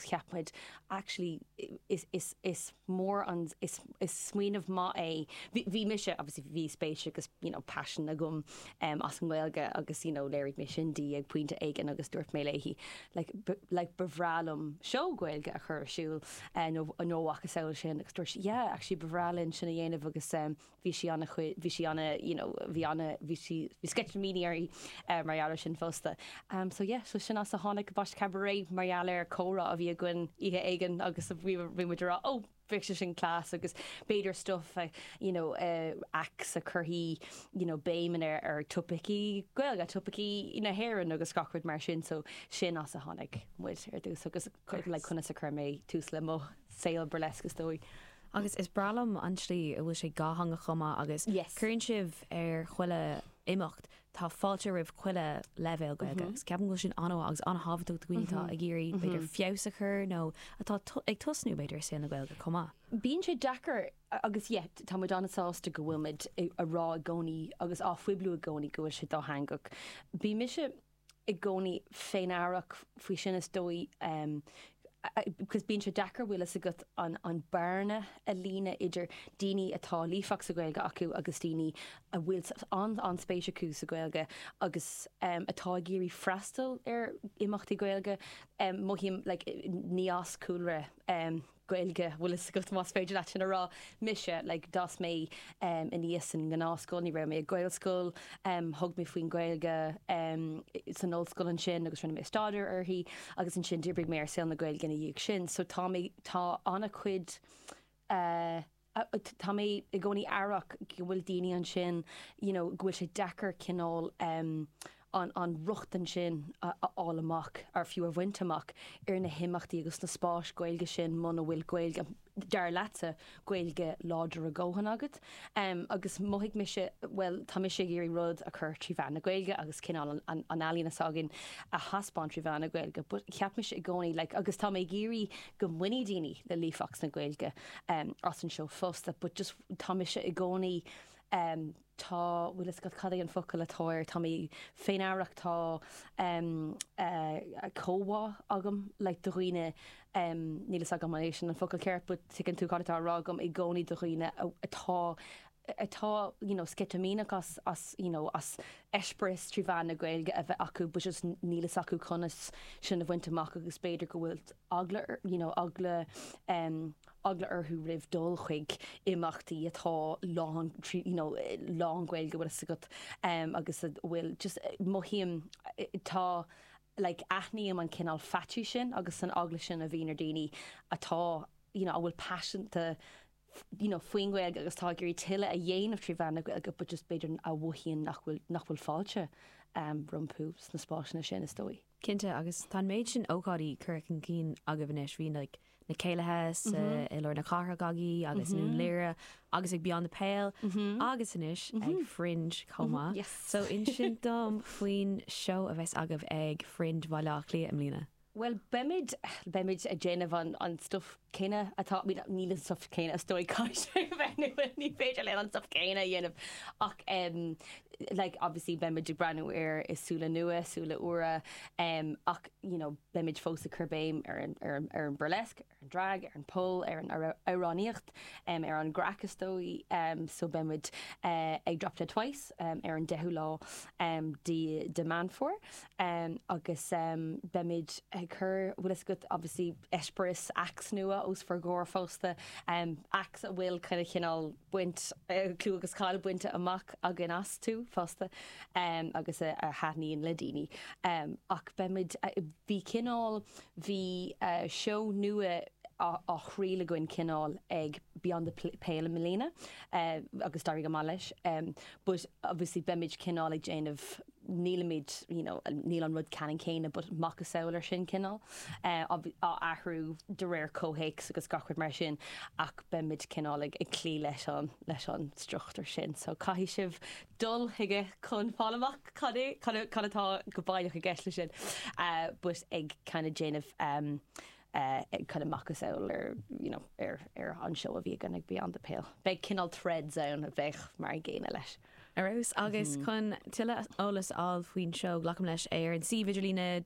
cheap muid actually is mór an, is smaoineamh maith é bhí mise obviously bhí spéis agus you know paisean agam as an nGaeilge agus you know léirigh mé sin di ag pointe éigin agus dúirt mé léi like ba bhreá liom seó Gaeilge a chur ar siúl nó macasamhail sin agus dúirt sí yeah actually ba bhreá linn sin a dhéanamh agus bhí sí ana chuid, bhí sí ana, you know, bhí ana, bhí sí, bhí sceitimíní uirthi mar gheall air sin fosta. So yeah, so sin as a tháinig Bosch Cabaret mar gheall ar comhrá a bhí againn oíche éigin agus bhí, bhí muid ag rá oh, bheadh sé sin class agus b'fhéidir stuff a, you know, acts a chuirfidh, you know, béim ar ar topaicí Gaeilge, topaicí na hÉireann agus gach rud mar sin. So sin as a tháinig muid ar tús agus like conas a chuir mé tús le mo saol burlesque is dóigh. Agus is breá liom an tslí a bhfuil sé dátheangach chomh maith agus Yes. cuireann sibh ar chuile imeacht, tá fáilte roimh chuile leibhéal Gaeilge agus ceapaim go bhfuil sin an-mhaith agus an-thábhachtach do dhaoine atá ag iarraidh b'fhéidir feabhas a chur nó atá to- ag tosnú b'fhéidir i saol na Gaeilge chomh maith. Bíonn sé deacair agus yeah t- tá muid an-sásta go bhfuil muid i- a rá i gcónaí agus á phoibliú i gcónaí go bhfuil sé dátheangach. Bhí mise i gcónaí féin amhrasach faoi sin is dóigh agus bíonn sé deacair bhfuil fhios agat an bearna a líonadh idir daoine a tá líofacht sa Ghaeilge acu agus daoine a bhfuil an-spéis acu sa Ghaeilge agus atá ag iarraidh freastal ar imeachtaí Gaeilge. Mothaím like ní as cúlra. Gaeilge, bhfuil fhios agat, más féidir leat sin a rá. Mise, like, d'fhás mé em aníos sa ngnáthscoil, ní raibh mé ag Gaelscoil, em thug mé faoin Gaeilge em san ollscoil ansin agus rinne mé staidéar uirthi agus ansin d'oibrigh mé ar saol na Gaeilge ina dhiaidh sin so tá mé tá an-chuid eh tá mé i gcónaí aireach go bhfuil daoine ansin you know go bhfuil sé deacair cineál em an an rochtain sin a fháil amach or fiú a bhaint amach ar na himeachtaí agus na spáis Gaeilge sin muna bhfuil Gaeilge dar leatsa Gaeilge láidir a ndóthain agat em agus mhothaigh mise bhuel tá mise ag iarraidh rud a chur trí mheán na Gaeilge agus cineál an an an ealaín s'againn a thaispeáint trí mheán na Gaeilge but cheap mise i gcónaí like agus tá mé ag iarraidh go mbainfidh daoine le líofacht na Gaeilge as an seó fosta but just tá mise i gcónaí tá bhfuil fhios agat cad é an focal atá air tá mé féin amhrasach tá comhbhá agam le do dhaoine níl fhios agam an é sin an focal ceart but tuigeann tú cad atá a rá agam i gcónaí do dhaoine atá atá you know sceitimíneach as as you know as eispéireas trí mheán na Gaeilge a bheith acu but just níl fhios acu conas sin a bhaint amach agus b'fhéidir go bhfuil eagla you know eagla um eagla orthu roimh dul chuig imeachtaí atá lán trí you know lán Gaeilge bhfuil fhios agat um agus a bhfuil just mothaím tá like aithním an cineál faitís sin agus an eagla sin a bhíonn ar daoine atá you know a bhfuil paiseanta you know, faoin nGaeilge agus tá ag iarraidh tuilleadh a dhéanamh trí mheán na Gaeilge but just b'fhéidir a mhothaíonn nach bhfuil, nach bhfuil fáilte rompu sna spásanna sin is dóigh. Cinnte, agus tá an méid sin ócáidí curtha chun cinn agaibh anois, bhí like na céilithe sa i lár na cathrach agaibh agus i nDún Laoghaire agus ag Beyond the Pale agus anois ag Fringe chomh maith. Yes! So inis dom faoin seó a bheas agaibh ag Fringe Bhaile Átha Cliath i mbliana. Bhuel beimid, beimid ag déanamh an, an stuif céanna atá, I mean níl an stuif céanna is dóigh, caithfidh sé a bheith nua, ní féidir linn an stuif céanna a dhéanamh ach em like obviously beimid ag breathnú air le súile nua, súile úra em ach you know beimid fós ag cur béim ar an, ar an, ar an burlesque. ar an drag, ar an pole, ar an amhránaíocht, ar an gcraic is dóigh so beidh muid ag Drop Dead Twice ar an 10ú lá de Meán Fómhair agus beimid ag cur bhfuil fhios agat obviously eispéireas acts nua os bhur gcomhair fosta acts a bhfuil kind of cineál baint clú agus cáil bainte amach acu fosta agus a thaitníonn le daoine ach beimid bhí cineál Bhí seó nua á thriail againn, cineál ag Beyond the Pale i mbliana agus d'éirigh go maith leis. But obviously beimid cineál ag déanamh, nílimid, you know, níl an rud ceannann céanna but macasamhail air sin cineál, á athrú de réir comhthéacs agus gach rud mar sin ach beimid cineál ag cloí leis an struchtúr sin. So caithfidh sibh dul chuige chun fáil amach cad é, cad atá go baileach i gceist leis sin, but ag kind of déanamh ag kind of macasamhail ar you know ar an seó a bhí againn ag Beyond the Pale. Beidh cineál threads ann a bheadh mar an gcéanna leis. Ar dóigh, agus chun tuilleadh eolas a fháil faoin seó, glacaim leis ar an suíomh idirlíne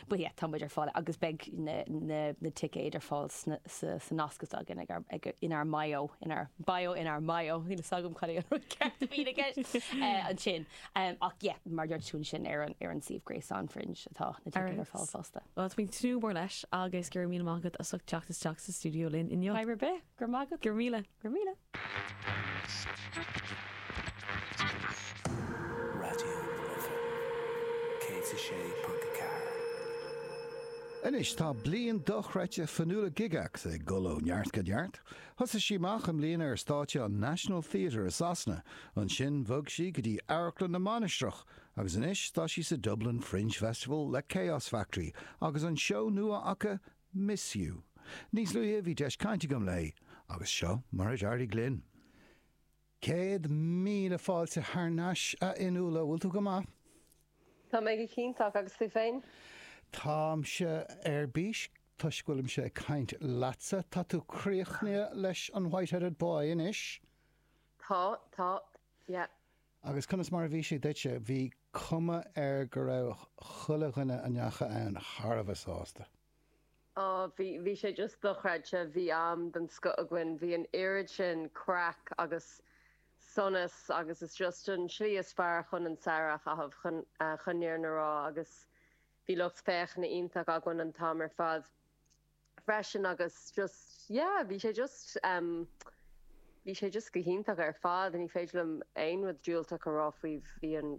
But yeah, tá muid ar fáil agus beidh na ticéid ar fáil sa nasc s'againn inár mbio, inár bio, inár mbio, níl fhios agam cad é an rud ceart a bhíonn i gceist ansin. Ach yeah, mar a dúirt tú ansin ar an suíomh gréasáin Fringe atá na ticéid ar fáil fosta. Well, tá mé ag tnúth go mór leis agus go raibh míle maith agat as ucht teacht isteach sa stiúideo linn inniu. Bye ribé. Go raibh maith agat. Go raibh míle. Go raibh míle. Raidió na Life 106.4. Anois tá bliain dhochreidte Fionnuala Gygax ag dul ó neart go neart. Thosaigh sí amach i mbliana ar stáitse an National Theatre i Sasana, ansin bhog sí go dtí Amharclann na Mainistreach agus anois tá sí sa Dublin Fringe Festival le Chaos Factory agus an seó nua acu Miss You. Níos luaithe bhí deis chainte agam léi agus seo mar a d'éirigh linn. Céad míle fáilte thar n-ais a Fhionnuala, bhfuil tú go maith? Tá mé go hiontach agus tú féin? Táimse ar bís toisc go bhfuilimse ag caint leatsa. Tá tú críochnaithe leis an Whiteheaded Boy anois? Tá, tá. Yeah. Agus conas mar a bhí sé duitse? Bhí cuma air go raibh chuile dhuine a ndeachaigh ann thar a bheith sásta. Ó, bhí, bhí sé just dochreidte. Bhí am den scoth againn. Bhí an oiread sin craic agus sonas agus is just an slí is fearr chun an samhradh a chaitheamh, chun, chun an fhírinne a rá agus bhí lucht féachana iontach againn an t-am ar fad. freisin agus just yeah bhí sé just um bhí sé just go hiontach ar fad ní féidir liom aon rud diúltach a rá faoi bhí an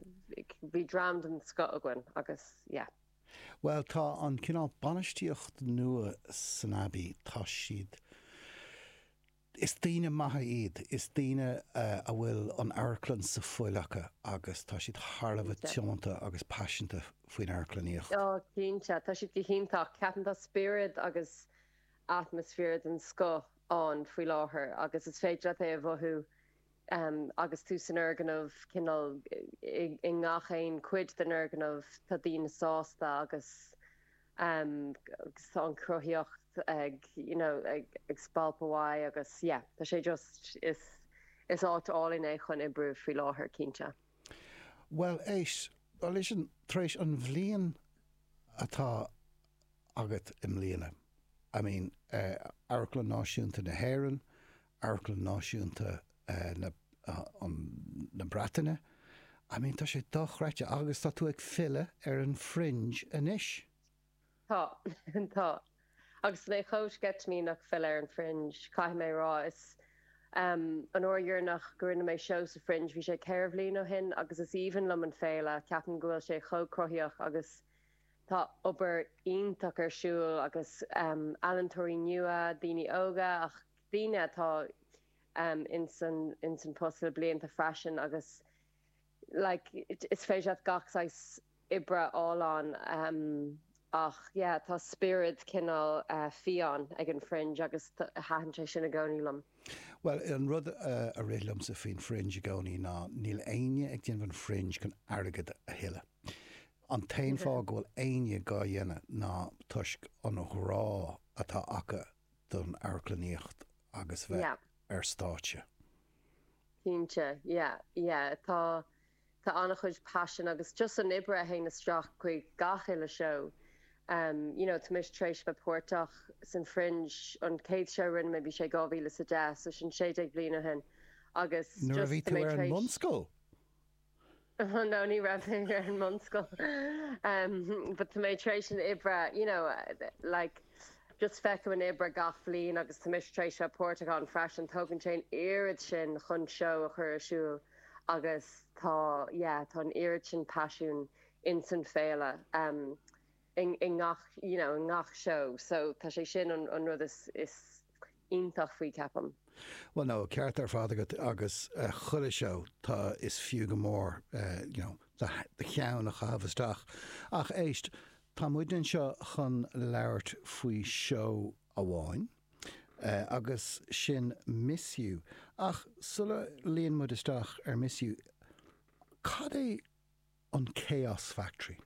bhí dream den scoth againn agus yeah. Bhuel tá an cineál bainistíocht nua san Abbey, tá siad, Is daoine maithe iad, is daoine a bhfuil an amharclann sa bhfuil acu agus tá siad thar a bheith tiomanta agus paiseanta faoin amharclannaíocht. Cinnte, tá siad go hiontach. Ceapaim tá spiorad agus atmaisféar den scoth ann faoi láthair agus is féidir leat é a mhothú Agus tú san fhoirgneamh, cineál i ngach aon chuid den fhoirgneamh, tá daoine sásta agus tá an chruthaíocht ag you know ag spalpadh uaidh agus yeah tá sé just, is is áit álainn é chun oibriú faoi láthair, cinnte. Bhuel éist, listen, tar éis an bhliain atá agat i mbliana, I mean Amharclann Náisiúnta na hÉireann, amharclann náisiúnta na Breataine. I mean, tá sé dochreidte agus tá tú ag filleadh ar an Fringe anois. Tá, tá. Agus mé chomh sceitimíneach filleadh ar an Fringe, caithfidh mé a rá. Is um an uair dheireanach go ndearna mé seó sa Fringe, bhí sé ceithre bhliain ó shin agus is aoibhinn liom an féile, ceapaim go bhfuil sé chomh cruthaíoch agus tá obair iontach ar siúl agus um ealaintóirí nua, daoine óga ach. daoine atá ins an post le blianta freisin agus like is féidir leat gach saghas oibre a fháil ann ach yeah tá spiorad cineál fiáin ag an Fringe agus thaitin sé sin i gcónaí liom. Bhuel an rud a rith liomsa faoin Fringe i gcónaí ná níl éinne ag déanamh an Fringe chun airgead a thuilleadh. An t-aon fáth go bhfuil éinne dhá dhéanamh ná toisc an ghrá atá acu don amharclannaíocht agus bheith Yeah. ar stáitse. Cinnte. Yeah. Yeah. Tá, tá an-chuid passion agus just an obair a théann isteach chuig gach uile seó. Em, you know, tá mise tar éis bheith páirteach san Fringe, an chéad seó a rinne mé bhí sé 2010, so sin sé déag bliain ó shin agus Nuair a bhí tú ar an mbunscoil? no ní raibh mé ar an mbunscoil em but tá mé tar éis an obair you know like just feicim an obair gach bhliain agus tá mise tar éis bheith páirteach ann freisin tógann sé an oiread sin chun seó a chur ar siúl agus tá yeah tá an oiread sin passion insan féile em i ngach you know i ngach seó so tá sé sin an an rud is is iontach faoi ceapaim. Bhuel no ceart ar fad agat agus chuile seó is fiú go mór you know do cheann a chaitheamh isteach ach éist tá muid anseo chun labhairt faoi seó amháin agus sin Miss You ach sula luíonn muid isteach ar Miss You cad é an Chaos Factory.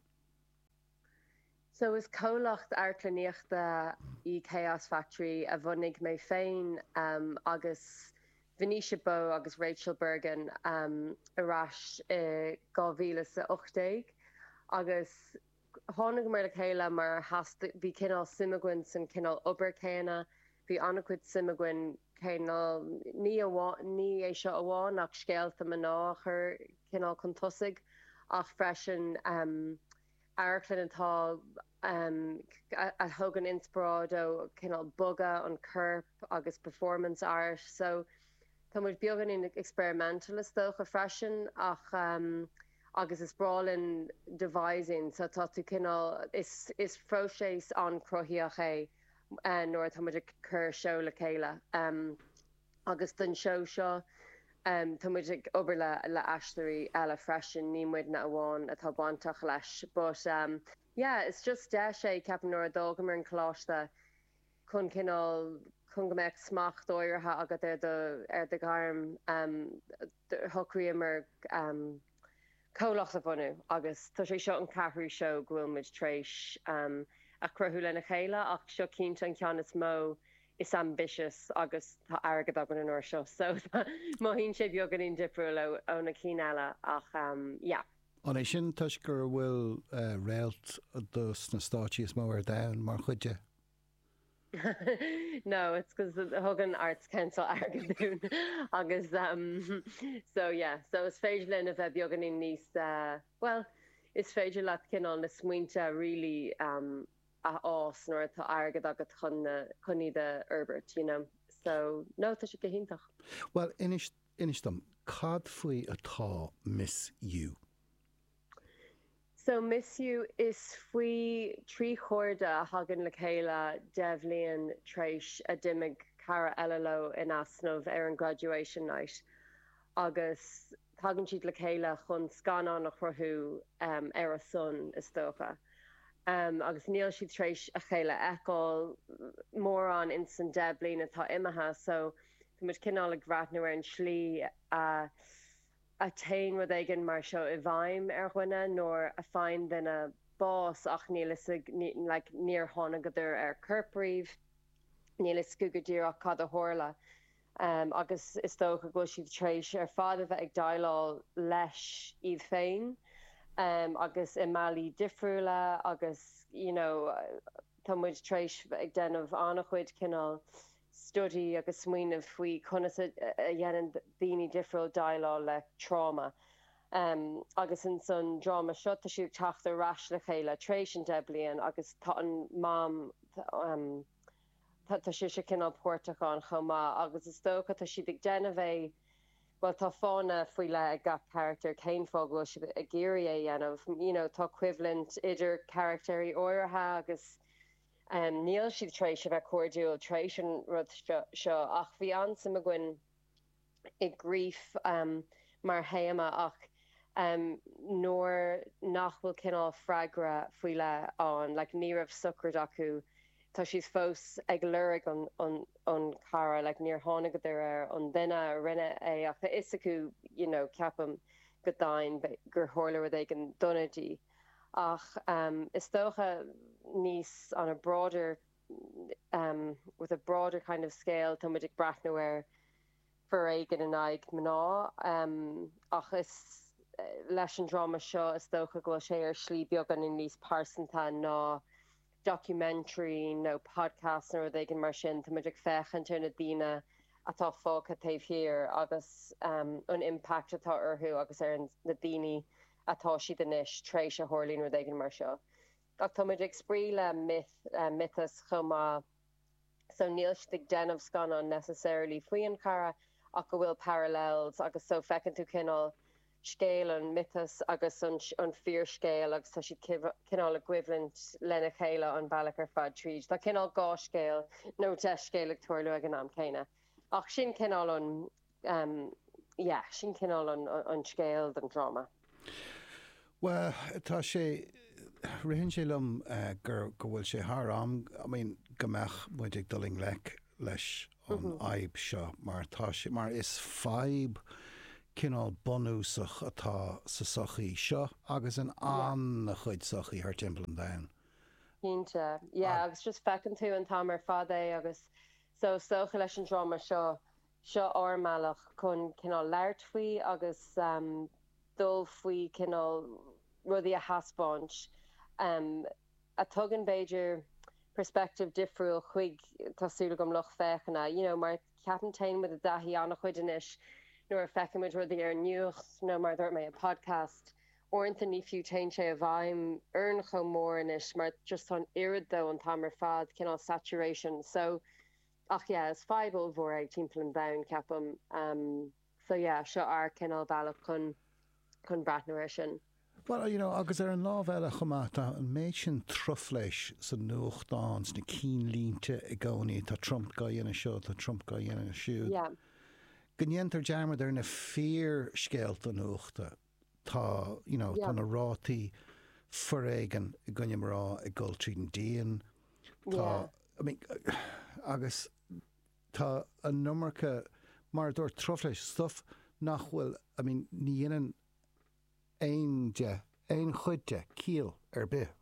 So is comhlacht amharclannaíochta í Chaos Factory a bhunaigh mé féin agus Venetia Bowe agus Rachel Bergin ar ais i 2018 agus thángamar le chéile mar just bhí cineál suim againn san cineál obair céanna, Bhí an-chuid suim againn cé ní é seo amháin ach scéalta mná a chur cineál chun tosaigh ach freisin amharclann atá a thógann inspioráid ó cineál bogadh an choirp agus performance art so tá muid beagáinín experimental is dócha freisin ach agus is breá linn devising so tá tú cineál is próiseas an-chruthaitheach é. nuair atá muid ag cur seó le chéile agus don seó seo tá muid ag obair le le aisteoirí eile freisin ní muidne amháin atá bainteach leis but yeah is just deis é ceapaim nuair a d'fhágamar an coláiste chun cineál chun go mbeadh smacht áirithe agat ar do ar do ghairm shocraíomar go comhlacht a bhunú agus tá sé seo an ceathrú seó go bhfuil muid tar éis a chruthú lena chéile ach seo cinnte an ceann is mó, is ambitious agus tá airgead againn an uair seo so mothaíonn sé beagáinín difriúil ó na cinn eile ach yeah. An é sin toisc gur bhfuil réalt de sna stáitsí is mó ar domhan mar chuid de? no it's cos thug an arts council airgead dúinn agus um so yeah so is féidir linn a bheith beagáinín níos uh well is féidir leat cineál na smaointe a really um a fhás nuair atá airgead agat chun na chun iad a fhorbairt you know so no tá sé go hiontach. Bhuel inis inis dom cad faoi atá Miss You? So Miss You Is faoi thrí chairde a thagann le chéile deich bhliain tréis a d'imigh cara eile leo in easnamh ar an Graduation Night agus tagann siad le chéile chun scannán a chruthú ar a son is dócha agus níl siad tréis a chéile a fheiceáil mórán in san deich bliain atá imithe so tá muid cineál ag breathnú ar an slí a a théann rud éigin mar seo i bhfeidhm ar dhuine nuair a faigheann duine bás ach níl fhios ag like níor thánagadar ar corp riamh níl fhios acu go díreach cad a tharla em agus is dócha go bhfuil siad tréis ar fad a bheith ag déileáil leis iad féin em agus i mbealaí difriúla agus you know tá muid tréis bheith ag déanamh an-chuid cineál study agus smaoineamh faoi conas a dhéanann daoine difriúil déileáil le tráma agus in san dráma seo tá siad ag teacht ar ais le chéile tar éis an deich bliain agus tá an mam tá sise cineál páirteach ann chomh maith agus is dócha tá siad ag déanamh é bhuel tá fáth faoi leith ag gach carachtar cén fáth go bhfuil siad ag iarraidh é dhéanamh you know tá coimhlint idir carachtair áirithe agus Níl siad tar éis a bheith cairdiúil tar éis an rud seo ach bhí an-suim againn i grief mar théama ach nuair nach bhfuil cineál freagra faoi leith ann, like ní raibh sochraid acu, tá siad fós ag lorg an cara, like níor thánagadar ar an duine a rinne é ach tá fhios acu, you know, ceapaim go daingean gur tharla rud éigin dona di. Ach is dócha níos on a broader with a broader kind of scale tá muid ag breathnú ar foréigean in aghaidh mná ach is leis an dráma seo is dócha go bhfuil sé ar shlí beagáinín níos pearsanta ná documentary nó podcast nó rud éigin mar sin, tá muid ag féachaint ar na daoine atá fágtha taobh thiar agus an impact atá orthu agus ar na daoine atá siad anois tréis a dtarlaíonn rud éigin mar seo. Ach tá muid ag spraoi le myth, miotas chomh maith. so níl siad ag déanamh scannán necessarily faoin gcara ach go bhfuil parallels agus so feiceann tú cineál scéal an mhiotais agus an fíorscéal agus tá siad cineál i gcoimhlint lena chéile an bealach ar fad tríd. Tá cineál dhá scéal nó deich scéal ag tarlú ag an am céanna ach sin cineál an yeah, sin cineál an scéal don dráma. Well, tá sé, ritheann sé liom gur, go bhfuil sé thar am, I mean, go mbeadh muid ag dul i ngleic leis an fhadhb seo, mar tá sé, mar is fadhb cineál bunúsach atá sa tsochaí seo agus in an-chuid sochaí thar timpeall an domhain. Cinnte, yeah, agus just feiceann tú an t-am ar fad é agus so, is dócha leis an dráma seo Seo é ár mbealach chun cineál labhairt faoi agus dul faoi cineál rudaí a thaispeáint a tugann b'fhéidir perspective difriúil chuig tá súil agam lucht féachana, you know mar ceapaim téann muid i dtaithí an-chuid anois nuair a fheiceann muid rudaí ar an nuacht nó mar a dúirt mé i bpodcast uaireanta ní fiú téann sé i bhfeidhm orainn chomh mór anois mar just tá an oiread de an t-am ar fad cineál saturation so Ach yeah is fadhb ollmhór é timpeall an domhain ceapaim. So yeah seo ár cineál bealach chun chun breathnú air sin. Bhuel you know agus ar an lámh eile chomh maith tá an méid sin truflais sa nuachtán, sna cinnlínte i gcónaí, tá Trump gá dhéanamh seo, tá Trump gá dhéanamh siúd. Yeah. Go ndéantar dearmad ar na fíor-scéalta nuachta. Tá, you know, tá na rátaí foréigin i gcoinne mná ag dul tríd an díon. Tá, I mean, agus tá an iomarca, mar a dúirt, truflais, stuff nach bhfuil, I mean, ní dhéanann aon de, aon chuid de, ciall ar bith.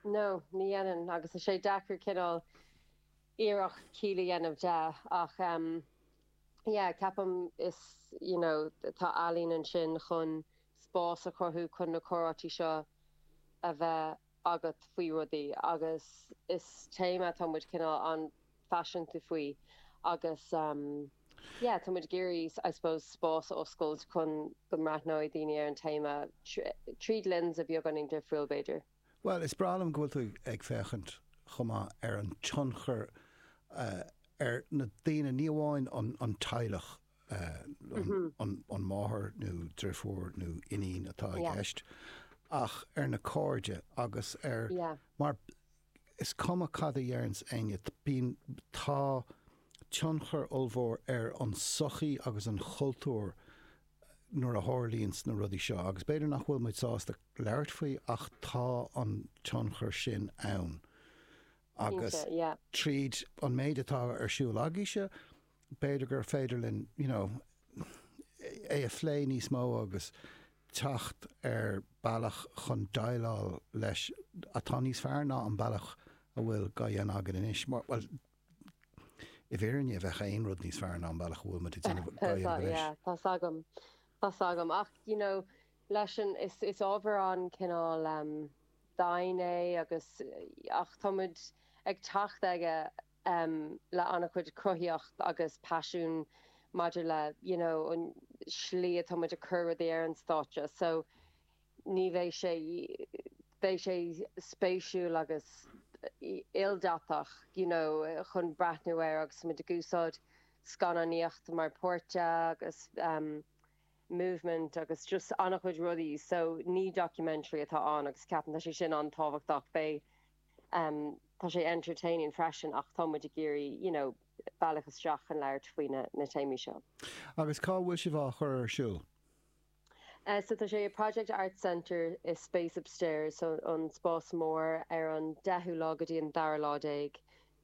No, ní dhéanann, agus tá sé deacair cineál iarracht ciall a dhéanamh de, ach yeah ceapaim is you know tá ealaín ansin chun spás a chruthú chun na comhráite seo a bheith agat faoi rudaí agus is téama atá muid cineál an-phaiseanta faoi agus em yeah tá muid ag iarraidh I suppose spás a oscailt chun go mbreathnóidh daoine ar an téama tríd lens atá beagáinín difriúil b'fhéidir. Bhuel, is breá liom go bhfuil tú ag féachaint chomh maith ar an tionchar ar na daoine, ní amháin an teaghlach, an máthair nó drifiúr nó iníon atá i gceist, ach ar na cairde agus ar, mar is cuma cad a deireanns éinne, bíonn, tá tionchar ollmhór ar an sochaí agus an cultúr nuair a tharlaíonn na rudaí seo, agus b'fhéidir nach bhfuil muid sásta labhairt faoi ach tá an tionchar sin ann agus tríd an méid atá ar siúl agaíse b'fhéidir gur féidir linn you know é a phlé níos mó agus teacht ar bealach chun déileáil leis atá níos fearr ná an bealach a bhfuil dhá dhéanamh againn anois. Bhuel, I bhfírinne, bheadh aon rud níos fearr ná an bealach a bhfuil muid ag déanamh go dtí anois. Tá s'agam. Tá s'agam. Ach you know, leis sin, is ábhar an-chineál dian é agus ach tá muid ag teacht aige le an-chuid cruthaíocht agus paisiún maidir le you know an slí atá muid ag cur rudaí ar an stáitse. So. Ní bheidh sé, beidh sé spéisiúil agus ildathach you know chun breathnú air agus muid ag úsáid scannánaíocht mar pháirt agus ehm movement agus just an-chuid rudaí so ní documentary atá ann agus ceapaim tá sé sin an-tábhachtach, beidh ehm tá sé entertaining freisin ach tá muid ag iarraidh you know bealach isteach chun labhairt faoi na téamaí seo. Agus cá bhfuil sibh á chur ar siúl? So tá sé i Project Arts Centre i Space Upstairs, so an spás mór, ar an deichiú lá go dtí an dara lá déag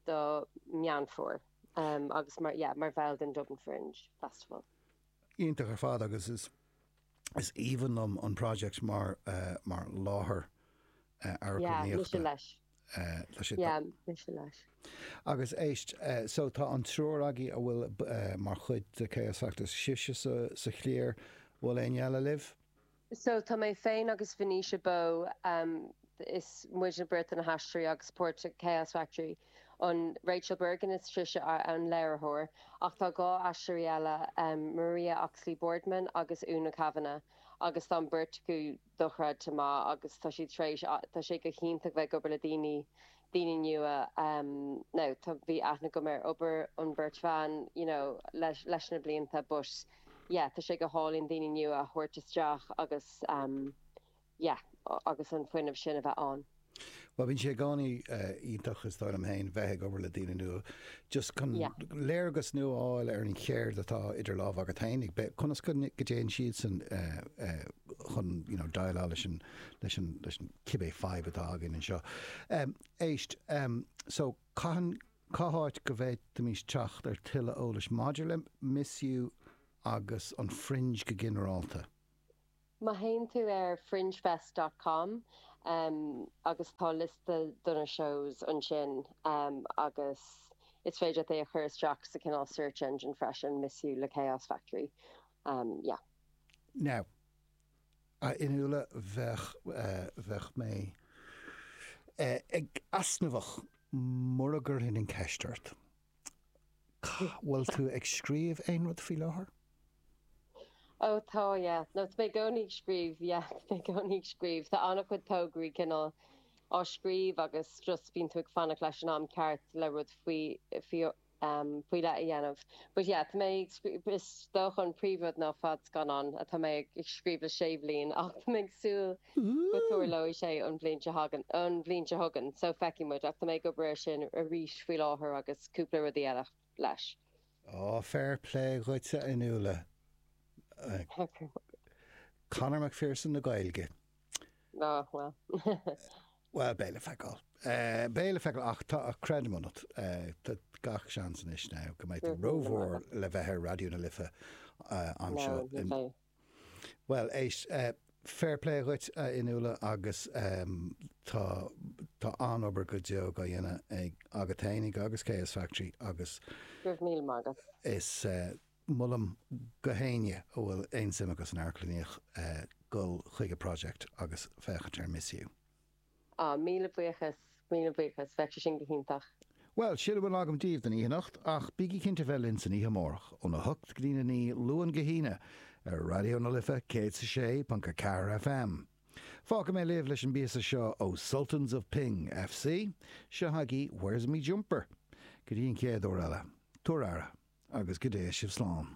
do Meán Fómhair agus mar, yeah, mar bhall den Dublin Fringe Festival. Iontach ar fad agus is, is aoibhinn liom an Project mar, mar láthair amharclannaíochta. Yeah, mise leis. Agus éist, so tá an triúr agaí a bhfuil mar chuid de Chaos Factory, sibhse sa chliar, bhfuil éinne eile libh? So tá mé féin agus Venetia Bowe, is muidne beirt na haisteoirí agus páirt Chaos Factory, and Rachel Bergin is sise an léiritheoir, ach tá dhá aisteoirí eile, Maria Oxley-Boardman agus Úna Kavanagh, agus tá an beirt acu dochreidte maith agus tá siad tar éis, tá sé go hiontach bheith ag obair le daoine, daoine nua now tá, bhí aithne agam ar obair an bheirt bhan you know leis, leis na blianta but yeah tá sé go hálainn daoine nua a thabhairt isteach agus yeah agus an fuinneamh sin a bheith ann. Bhuel bhíonn sé i gcónaí iontach is dóigh liom féin bheith ag obair le daoine nua just chun léargas nua a fháil ar an cheird atá idir lámh agat féinig bheith, conas go dtéann siadsan chun you know déileáil leis an leis an leis an cibé fadhb atá againn anseo. Éist so caitheann cá háit go bhféadfaimís teacht ar thuilleadh eolais maidir le Miss You agus an Fringe go ginearálta? Má théann tú ar fringefest dot com agus tá liosta do na shows ansin agus is féidir leat é a chur isteach sa cineál search engine freisin, Miss You le Chaos Factory. Yeah. Now, a Fhionnuala, bheadh, bheadh mé easnamhach mura gcuirfinn an cheist ort. An bhfuil tú ag scríobh aon rud faoi láthair? Ó tá yeah. Nó tá mé i gcónaí ag scríobh yeah. Tá mé i gcónaí ag scríobh. Tá an-chuid tograí cineál á scríobh agus just bíonn tú ag fanacht leis an am ceart le rud faoi faoi leith a dhéanamh. But yeah, tá mé ag scríobh, is dócha an príomhrud ná fadscannán atá mé ag scríobh le sé bliana ach tá mé ag súil Go dtarlóidh sé an bhliain seo chugainn, an bhliain seo chugainn, so feicfidh muid, ach tá mé ag obair air sin arís faoi láthair agus cúpla rudaí eile leis. Ó, fair play dhuit a Fhionnuala. Conor McPherson na Gaeilge. Ó, bhuel. Bhuel, beidh le feiceáil. Beidh le feiceáil ach tá, creidim ionat, tá gach seans anois now go mbeidh tú rómhór le bheith ar Raidió na Life anseo Bhuel, éist, fair play dhuit, a Fhionnuala, agus tá, tá an-obair go deo á dhéanamh ag, agat fhéinig agus Chaos Factory agus. Go raibh míle maith agat. Is molaim do éinne a bhfuil aon suim acu san amharclannaíocht dul chuig an Project agus féachaint ar Miss You. Ah, míle buíochas, míle buíochas, bheadh sé sin go hiontach. Bhuel, sin a bhfuil agam daoibh don oíche anocht, ach bígí cinnte bheith linn san oíche amárach, óna hocht go dtí a naoi, Luan go hAoine, ar Raidió na Life 106.4 FM. Fágfaidh mé sibh leis an bpíosa seo ó Sultans of Ping, fc. Seo chugaibh Where's Me Jumper? Go dtí an chéad uair eile, tugaigí aire, agus go dté sibh slán.